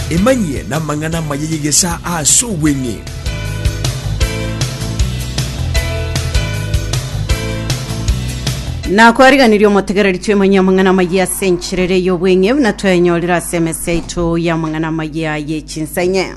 Emanyie namang'ana amaya y'egesaa ase obweng'e. nakwariganirie omotegereri twemanyie amang'ana amaya ase enchera ere y'obweng'e buna twaenyorire ase emese yaito y'amang'ana amaya ye chinsa enye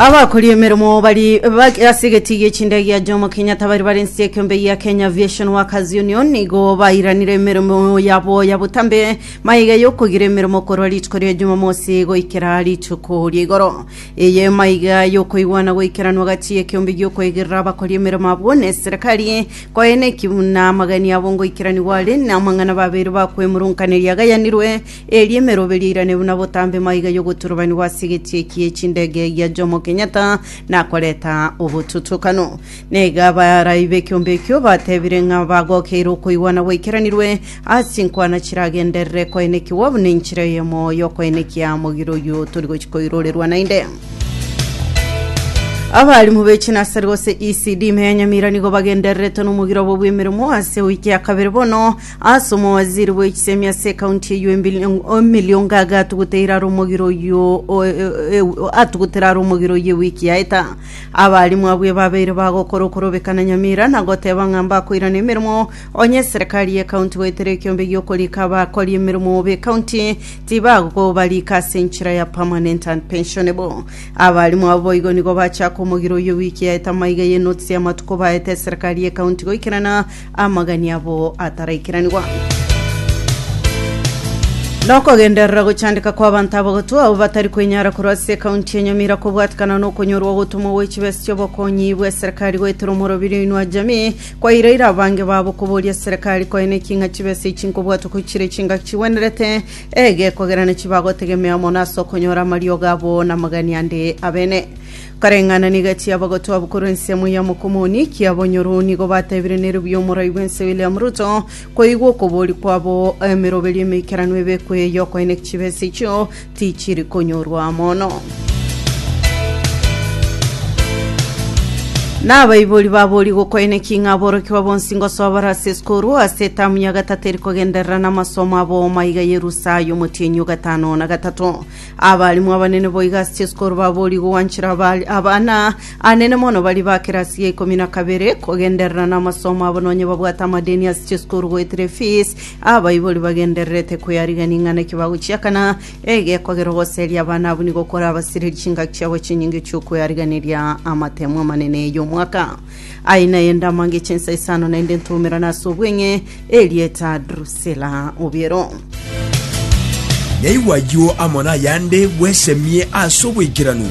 Abakori emeremo bari bak- ase egeti gie chindege ya Jomo Kenyatta bari bare ense ekeombe ya Kenya Aviation Workers Union nigo bairanire emeremo yabo ya botambe maiga yokogira emeremo korwa rituko ria Jumamosi goikera rituko ria igoro eye maiga yokoigwana goikeranwa gati y'ekeombe giokoigerera abakori emeremo abwo ne eserekari Koene ki buna amageni abo ngoikeranigwa are, na amang'ana babeire bakwemurunkaneria agayanirwe, eria emeroberio eirane buna botambe maiga y'ogoturubanigwa ase egetie eki e chindege gia Jomo Kenyatta nakoreta obotutukano. Naiga abaarabi b'ekiombe ekio batebire ng'a bagokeire okoigwa na gwaikeranirwe Ase chinkwana chiragenderere koenekigwa, buna enchera eyemo y'okoenekia mogire oyio tori gochia koirorerwa naende. Abarimu be chinasari gose ECD Meya Nyamira nigo bagendererete nomogiro obo bw'emeremo ase ewiki ya kabere bono ase omowaziri bw'echisemi ase ekaunti eyio Embil- Emily Ongaga atuguteire are omogiro oyio o- e- e- atugutere are omogiro oyio ewiki yaeta abarimu abwo ebabeire bagokora okorobekana Nyamira na goteba ng'a mbakoirana emeremo Onye eserekari y'ekaunti goetera ekiombe gi'okorika abakori emeremo b'ekaunti, tibagobarika ase enchera ya permanent and pensionable. Abarimu abo boigo nigo bachaka omogiro oyio ewiki yaeta amaiga y'enotisi y'amatuko baete eserekari y'ekaunti goikerana amagani abo ataraikeraniwa. Nokogenderera gochandeka kwa abanto abagotu abo batari kwenyara korwa ase ekaunti ya Nyamira kobwatekana nokonyorwa ogotoma gwe chibesa chi'obokonyi bw'eserekari goetera omoroberio oinwa jamii Kwairaire abange babo koboria Serekari koene ki ng'a chibesa echi nkobwatwa ko chire chingaki chigwenerete egekogera na chibagotegemea mono ase okonyora amariogo abo na amagani ande abene. Kareng'anani egati y'abagotwa abo korwa ensemo ya Mokomoni kia Bonyoro nigo batebire neribuya omorai bw'ense William Ruto koigwa okoboria kwabo emeroberio emeikeranu ebekwe y'okoene chibesa echio Tichiri konyorwa mono. Na abaibori baborie gokoene ki ng'a aborokigwa bonsi ngosoa bare ase eskoru ase etamu ya gatato eri kogenderera namasomo a booma iga y'erusa y'omotienyi o gatano na gatato. Abalimu abanene boiga ase eskoru baborie gogwanchera abali- abana anene mono baria ba kerasi ya ikomi na kabere kogenderera namasomo abo nonye babwate amadeni ase eskoru goetera efees Abaibori bagendererete koyarigia ning'ana eki bagochiakana, egekogera ogoseria abana abwo nigo korabasirie chingaki chiabo chinyinge chi'okoyariganiria amatemo amanene y'omwaka. Aye naye ndamange chinsa isano naende ntoumerane ase obweng'e erieta Drusila obiero. Naigwa ayio amo nayande bwesemie ase oboikeranu.